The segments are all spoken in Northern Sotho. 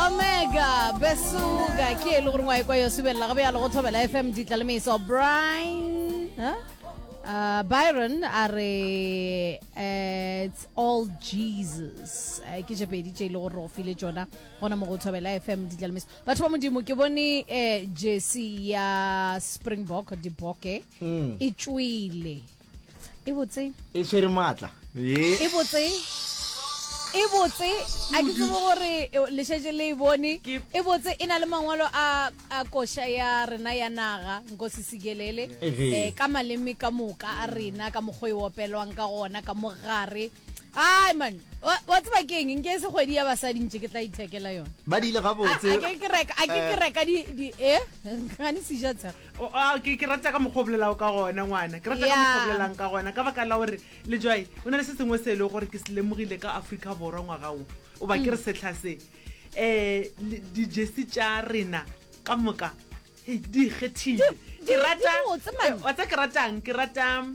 omega besuka ke e le gore ngwae kwa yo subelela go bjalo go thobela fm ditla le meso brian huh? Uh, byron a re uh, it's all jesus uh, ke tše pedi tše e le gore go file tsona gona mo go thobela fm ditla le meso batho ba modimo ke bone uh, jesi ya springbok diboke mm. e tšwile e botse e tshwere maatla e botse e botse a ke tsebo gore lešetse le e bone e botse e na le mangwalo a koša ya rena ya naga nkosi sikelele um ka maleme ka moka a rena ka mokgwa e opelwang ka gona ka mogare ai man wa tseba ke eng nke se kgwedi ya basadi ntse ke tla ithekela yone ba dile ga botse a ke ke reka a ke ke eh? reka di di eh ga ni sija tsha Ke ke rata ka mokgwa o bolelago ka gona ngwana ke rata ka mokgwa o bolelang ka gona ka baka la gore le jwae o na le se sengwe se e le gore ke se lemogile ka Africa Borwa ngwaga o o ba ke re setlha se um di-jersey tša rena ka moka hei di ikgethile ke rata wa tsa ke ratang ke rata um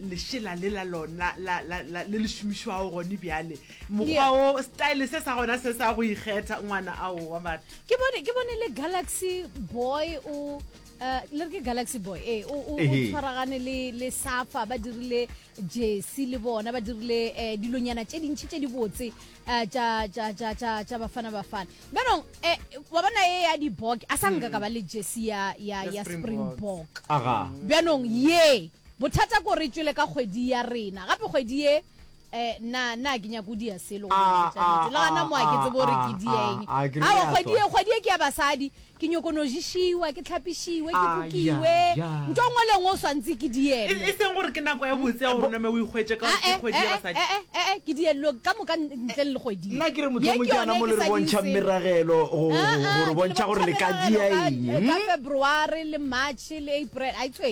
lešela le la lona la- la- la- le le šomišwago gone bjale mokgwa o style se sa gona se sa go ikgetha ngwana ao wa batho ke bone ke bone le galaxy boy o uh, le re ke galaxy boy ee o o- o Ehe. tshwaragane le le safa ba dirile jesi le bona ba dirile eh, dilonyana tše dintšhi tše di botse eh, tša tša- tša- tša- tša bafana bafana bjanong eh, wa bona e ya dibok a sa nka ka ba le jesi ya ya- Ya ya Springboks. springbok aga bjanong ye bothata ko re tšwele ka kgwedi ya rena gape kgwedi ye Eh, nna, nna a ke nyake o dia selo go Ah, botša ah, nnete. Le gana ah, moa ke ah, tsebe gore ah, ke di ah, eng. ah, ke re Awa, ya kgwedi tswa. e, kgwedi e ke ya basadi. Ke nyoko no ješiwa, ke tlhapišiwe, ke Ah, kukiwe. ya, ya. Nto ngwe le ngwe o swantse ke di E eme. e seng gore ke nako ya botse ya gore name o ikgwetše ka gore ke Ae, kgwedi ya ae, basadi. ae, ae, ae, ke diello ka moka n- ntle le kgwedi. ye. nna ke re Ye motlhomong ke yone yana mo e le ke re sa di bontšhang itseng. meragelo go Ah, go- go ah, re ke bontšha gore le ka bontšha dia meragelo ka- eng ka february le march le april a itswe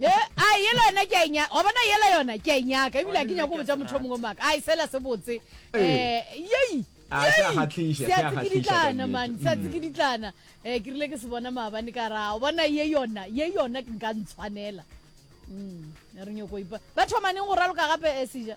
Ye, ai, yela yona ke a e nyaka. Wa bona, yela yona ke a e nyaka, ebile ga ke nyaka go botša motho yo mongwe maaka. Ai, sela se botse. Ee. Eh, yei, A, se a yei! kgahliša, se a Seatse ke kgahliša ka ditlana, man, nnete. seatse ke ditlana. Eh, ke rile ke se bona maabane ka ra, o bona, ye yona, ye yona ke nka ntshwanela. Mm, re nyoko ipa. Ba thoma neng go raloka gape, eh, Sija?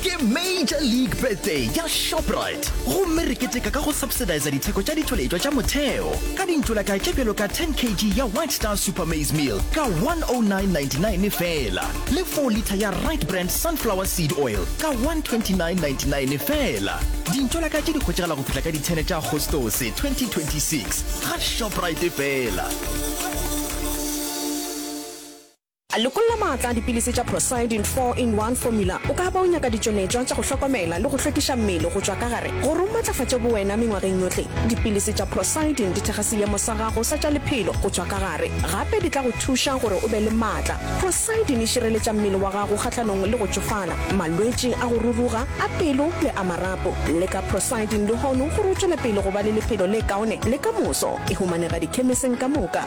Ke Major League Birthday ya Shoprite gomme re keteka ka go subsidisa ditheko tša ditšweletšwa tša motheo ka dintšolaka tše bjalo ka 10 kg ya White Star Super Maize Meal ka 109.99 feela le 4 litha ya Right Brand Sunflower Seed Oil ka 129.99 feela. Dintšolaka tše di hwetšagala go fihla ka di 10 tša Agostose 2026 ga Shoprite feela. Lekola maatla a dipilisi tša Procyldin 4 in 1 Formula. O ka ba o nyaka ditšweletšwa tša go hlokomela le go hlwekiša mmele go tšwa ka gare gore o matlafatše bowena mengwageng yohle. Dipilisi tša Procyldin di thekga seemo sa gago sa tša lephelo go tšwa ka gare, gape di tla go thuša gore o be le maatla. Procyldin e šireletša mmele wa gago kgahlanong le go tšofala, malwetši a go ruruga, a pelo le a marapo. Leka Procyldin lehono gore o tšwele pele go ba le lephelo le kaone le ka moso. E humanega dikhemeseng ka moka.